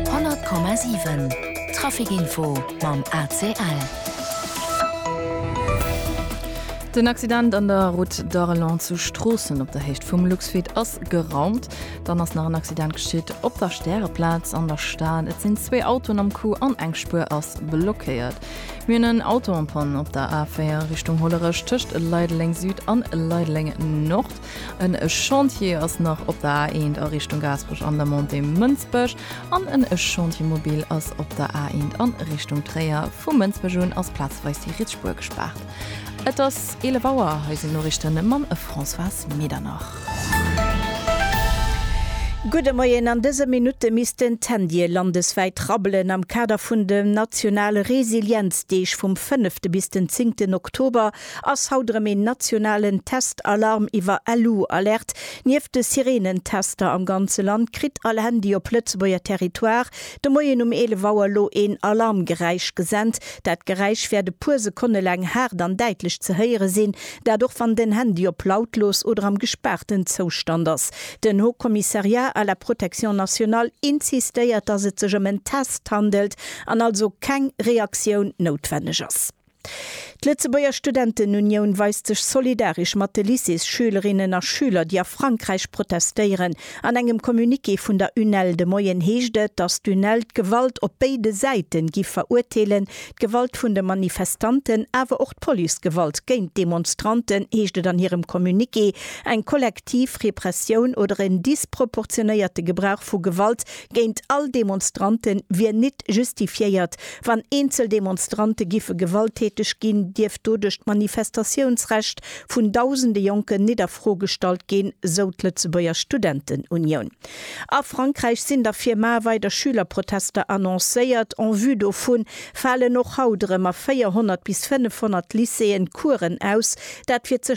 100,7 Trafic-Info mam ACL. Den Accident an der Route d'Arelon zu Stroossen op der Héicht vum Luxfeed ass geraumt. Dann ass nach en Accident geschitt op der Stäreplaz an der Stad. Et sinn zwee Autoen am Coup an eng Spuer ass blockéiert. Mir hunn en Auto en panne op der A4 Richtung Hollerech tëscht Leideleng Süd an Leideleng Nord. En Chantier ass nach op der A1 a Richtung Gaasperech an der Montée Mënsbech an en Chantier mobile ass op der A1 an Richtung Tréier. Vu Mënsbech un ass plazeweis déi Rietsspuer gespaart. Et ass 11 Auer, hei sinn d'Noriichten mam Françoise Medernach. Gudde Moien, an dëse Minutte missten d'Handye landeswäit rabbelen am Kader vun de nationale Resilienzdeeg vum fënnefte bis den zéngten Oktober. Ass haut erëm een nationalen Test-Alarm iwwer LU-Alerte. Nieft de Sirenen-Tester am ganze Land kritt all Handy op Lëtzebuerger Territoire de Moien um 11 Auer elo een Alarmgeräisch gesent. Dat Geräisch wäert e puer Sekonne laang haart an däitlech ze héiere sinn, dat och wann den Handy op lautlos oder am gespaarten Zoustand ass. Den Haut Commissariat à la Protection Nationale insistéiert, dass et sech ëm en Test handelt an also keng Reaktioun noutwenneg ass. D'Lëtzebuerger Studentenunioun weist sech solidaresch mat de Lycéesschülerinnen a schüler, déi a Frankräich protestéieren. An engem Communiqué vun der UNEL de Moien heescht et, datt d'UNEL d'Gewalt op béide Säite giff verurteelen, d'Gewalt vun de Manifestanten, awer och d'Policegewalt géint d'Demonstranten, heescht et an hirem Communiqué. Eng kollektiv Repressioun oder en disproportionéierte Gebrauch vu Gewalt géint all Demonstrante wier nit justifiéiert. Wann eenzel Demonstrante giffe gewalttäteg ginn, dierft doduerch d'Manifestatiounsrecht vun dausende Jonken nit a Fro gestallt ginn, sou d'Lëtzebuerger Studentenunioun. A Frankräich sinn der Firmae weider Schülerprotester annoncéiert. En vue dovun falen och haut erëm a 400 bis 500 Lycéeën d'Kueren aus. Dat fir ze.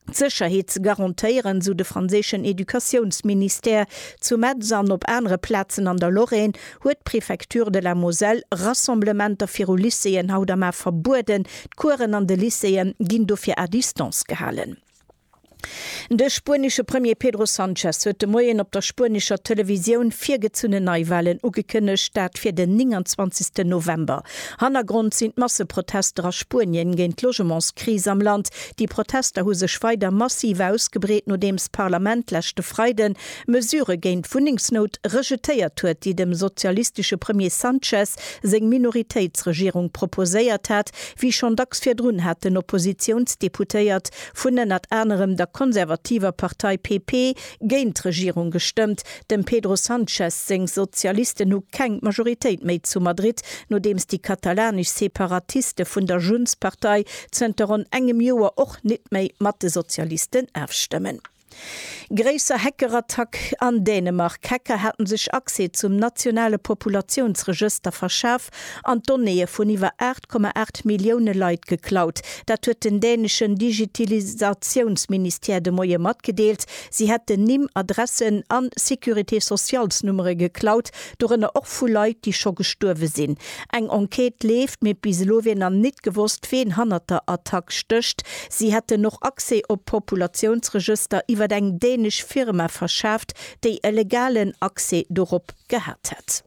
d'Sécherheet ze garantéieren, sou de franséischen Educatiounsministère. Zu Metz an op anere Plazen an der Lorraine huet d'Préfecture de la Moselle Rassemblementer viru Lycéeën haut am A verbueden. D'Kueren an de Lycéeë ginn dofir à distance gehalen. De spuenesche Premier Pedro Sanchez huet de Moien op der spuenescher Televisioun virgezunnen Neiwalen ugekënnegt, dat fir den 29 November. Hannergrond sinn d'Masseprotester a Spuenien géint d'Logementskris am Land, Déi Protester hu sech weider massiv ausgebreet, nodeems d'Parlament leschte Freiden Mesurë géint d'Wunnengsnout rejetéiert huet, déi dem sozialistesche Premier Sanchez seng Minoritéitsregierung proposéiert hat, wéi schonn dacks virdrun haten Oppositiounsdeputéiert vun ënnert anerem der konservativer Partei PP géint d'Regierung gestëmmt. Dem Pedro Sanchez seng Sozialisten hu keng Majoritéit méi zu Madrid, nodeems déi katalanesch Separatiste vun der Junts-Partei zënter ronn engem Joer och nit méi mat de Sozialisten afstëmmen. Gréisser Hackerattack an Dänemark, D'Hacker haten sech Accès zum nationale Populatiounsregëster verschaf an d'Donnéeë vun iwwer 8,8 Millioune Leit geklaut. Dat huet den däneschen Digitalisatiounsministère de Moie matgedeelt. Si hätten Nimm, Adressen an Sécurité-socialsnummere geklaut. Dorënner och vu Leit, déi scho gestuerwe sinn. Eng Enquête leeft, mee bis elo wier nach nit gewosst, ween hannert der Attack stécht. Si hätten och Accès op Populatiounsregëster iwwer eng dänesch Firma verschaaft, déi e legalen Accès dorop gehat hätt.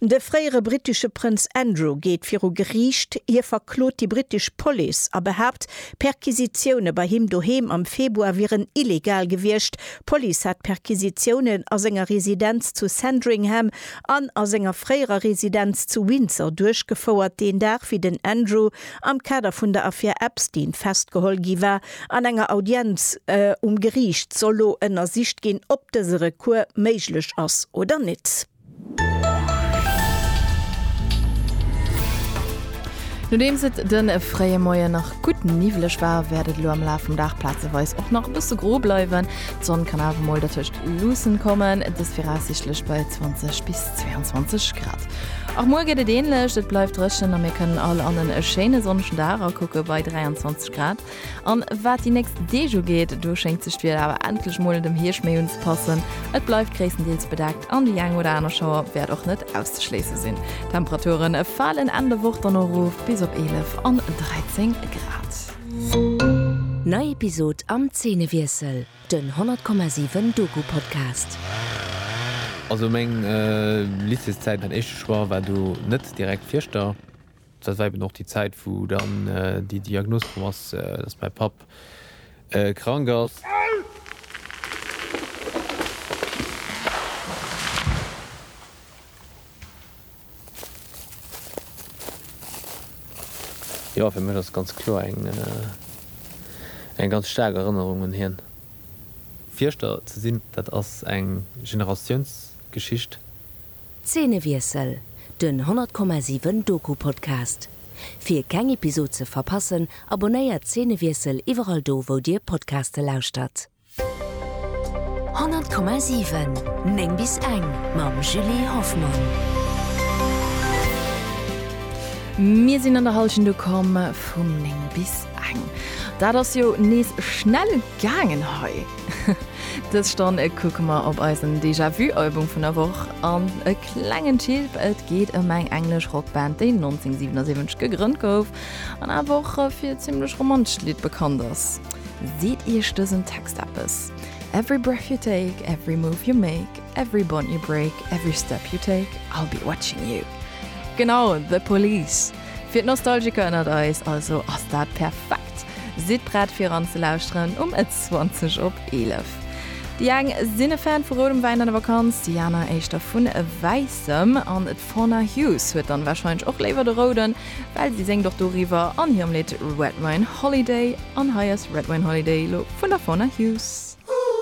De fréiere brittesche Prënz Andrew geet viru Geriicht. Hie verklot déi brittesch Police a behaapt, Perquisitioune bei him doheem am Februar wieren illegal gewiescht, D'Police hat Perquisitiounen a senger Residenz zu Sandringham an a senger fréierer Residenz zu Windsor duerchgefouert, deen Dag wéi den Andrew am Kader vun der Affär Epstein festgeholl gi war. An enger Audienz um Geriicht soll lo ënnersicht ginn, ob dëse Recours méiglech ass oder nitt. Nodeems et de fréie Moien nach gutt niwweleg war, wäert et elo am Laf vum Dag plazeweis och nach e bësse gro bleiwen. D'Sonn kann awer mol dertëscht luussen kommen, dëst viraussiichtlech bei 20 bis 22 Grad. Och muer geet et änlech, et bleift dréchen a mir kënnen all an e schéine sonnegen Dag akucke bei 23 Grad. An waat déi nächst Deeg ugeet, do schéngt sech d'Wieder awer endlech mol dem Hierscht méi unzepassen. Et bleift gréisstendeels bedeckt an déi eng oder aner Schauer wärt och net auszeschléissen sinn. D'Temperaturen faalen Enn der Woch dann och roof bis op 11 an 13 Grad. Nei Episod am Zeenewiessel, den 100,7 Doku-Podcast. Also meng Lycéeszäit, mäin éischte Choix war do net direkt Fieschter. Dat war eben och déi Zäit, wou dann déi Diagnos komm ass, dass mäi Papp krank ass. Jo, fir mech ass ganz kloer eng ganz staark Erënnerung un hien. Fierschter ze sinn, dat ass eng Generatiounsgeschicht. Zeenewiessel, den 100,7 Doku-Podcast. Fir keng Episod ze verpassen, abonnéiert Zeenewiessel iwwerall do wou dir Podcaste lauschtert. 100,7 9 bis eng mam Julie Hoffmann. Mir sinn an der Hallschent ukomm vum 9 bis eng. Dat ass jo nees schnell gaangen hei. Dës Stonn kucke mer op eisen Déjà-vu-Album vun der Woch an e klengen Chilp. Et geet ëm eng englesch Rockband, déi 1977 gegrënnt gouf an awer och fir e zimmlech romantescht Lidd bekannt ass. Seet iech dësen Text eppes? Every breath you take, every move you make, every bond you break, every step you take, I'll be watching you. Genau, The Police! Fir d'Nostalgiker ënnert eis also ass dat perfekt. Sidd prett fir eran ze lauschteren um 20 op 11. Déi eng sinn e Fan vu roudem Wäin an der Vakanz, déi aner éischter vun wäissem. An d'Fauna Hughes huet dann warscheinlech och léiwer de rouden, well si séngt och doriwwer an hirem Lidd Red Wine Holiday. An hei ass Red Wine Holiday elo vun der Fauna Hughes.